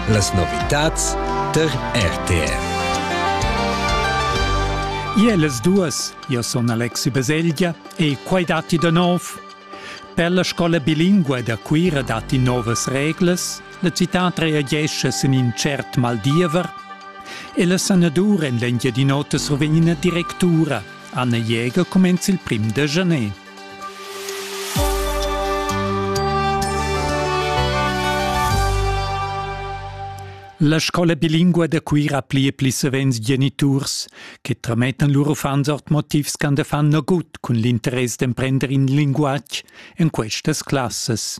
Las novitads tar RTF. Ie las duas, io son Alexi Baselgia e quai datti da nov. Per la scola bilingua da Cuira datti novas reglas, la citat reagesce sin in cert maldiever e la sanadur en l'Engiadin'Ota survegn ina directura, Anna Jäger, cumenza il prim de Janet. La scola bilingua da Cuira pli e pli savens geniturs che tramettan lur uffants ord motivs ch'han da fan nagut cun l'interess d'emprender in linguatg en questas classas,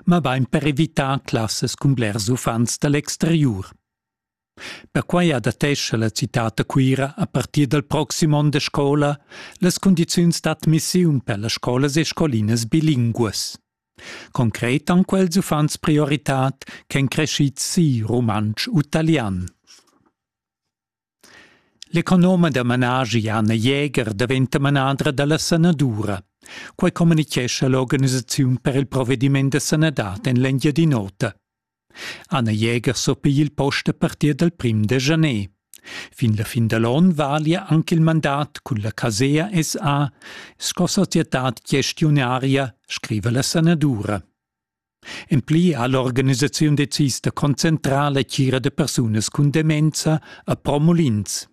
ma bain per evitar classas cun blers uffants da l'exteriur. Perquai adattescha la citad da Cuira a partir dal proxim onn da scola las cundiziuns d'admissiun per las scolas e scolinas bilinguas. Concret han quels uffants prioritad ch'èn crescids si rumantsch u talian. L'economa da managi Anna Jäger daventa manadra da la sanadura. Quai communitgescha l'organisaziun per il provediment da sanadad en l'Engiadin'Ota. Anna Jäger surpigl il post a partir dal prim da Janer. Fin la fin da l'on valia anche il mandat cun la Casea SA sco societad gestiunaria, scriva la sanadura. En pli ha l'organisaziun decis da concentrar la tgira da persunas cun demenza a Promulins.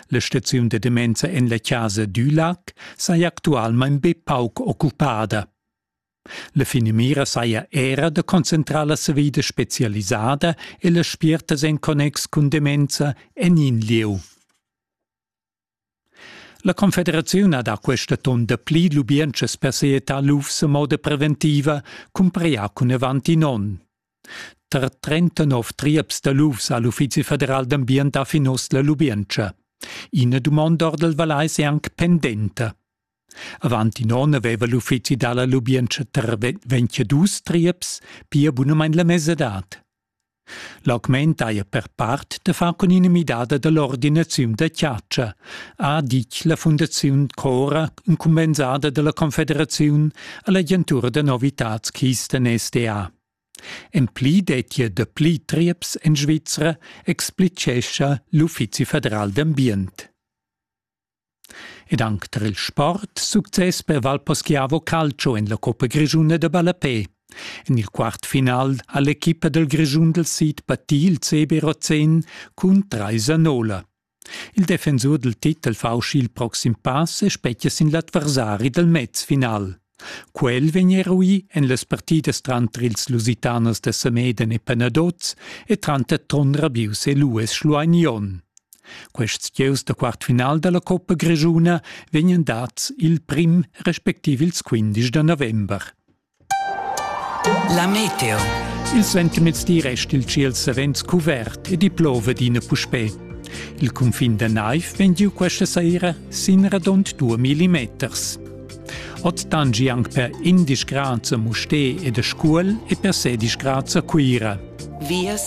La staziun da demenza en la casa Dülac saja actualmain be pauc occupada. La finamira saja era da concentrar la savida spezialisada e las spiertas en connex cun demenza en in lieu. La Confederaziun ha da questa ton dapli lubientschas per seetar lufs a moda preventiva cumparià cun avant in onn. Tar 39 triaps da lufs ha l'Uffizi federal d'ambient ha fin oz la lubientscha. Ina dumonda ord il Valais è anc pendenta. Avant in onn aveva l'uffizi dalla lubientscha Tervet ventg dus trieps pia bunamain la mesadad. L'augment haja per part da far cun ina midada dall'ordinaziun da chatscha, ha ditg la Fundaziun Cora incumbensada dalla Confederaziun all'agentura da novitads Kisten SDA. En pli dettia dapli trieps en Svizra, explitgescha l'Uffizi federal d'ambient. Ed anc tar il sport success per Valposchiavo Calcio en la coppa grischuna da ballapè. En il quartfinal ha l'equipa dal Grischun dal sid patì il CB Rozen cun trais a nola. Il defensur dal titel fa uscì il proxim pass e spetga sin l'adversari dal mezfinal. Quel vegn eruì en las partidas tranter ils Lusitanas da Sameden e Panaduz e tranter Trond Rabius e Lues Schlueignion. Quests gieus da quartfinal da la Coppa Grischuna vegnan dads il prim respectiv ils 15 da november. La meteo. Il sentimezdi resta il ciel savens cuvert e di plova d'ina puspè. Il cunfin da naiv vegn giu questa saira sin radund 2 millimeters. Ot dan gi anc per indisch graza Musté e de Scuol e per sedisch graza Cuira. Vias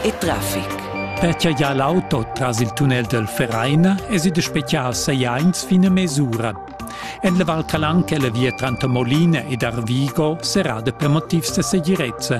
e traffic. Perche ja l'auto tras il tunnel del Vereina es ide special seiains fine mesura. En le Val Calanche la via Trantamolina ed Arvigo serà per motivs de segirezza.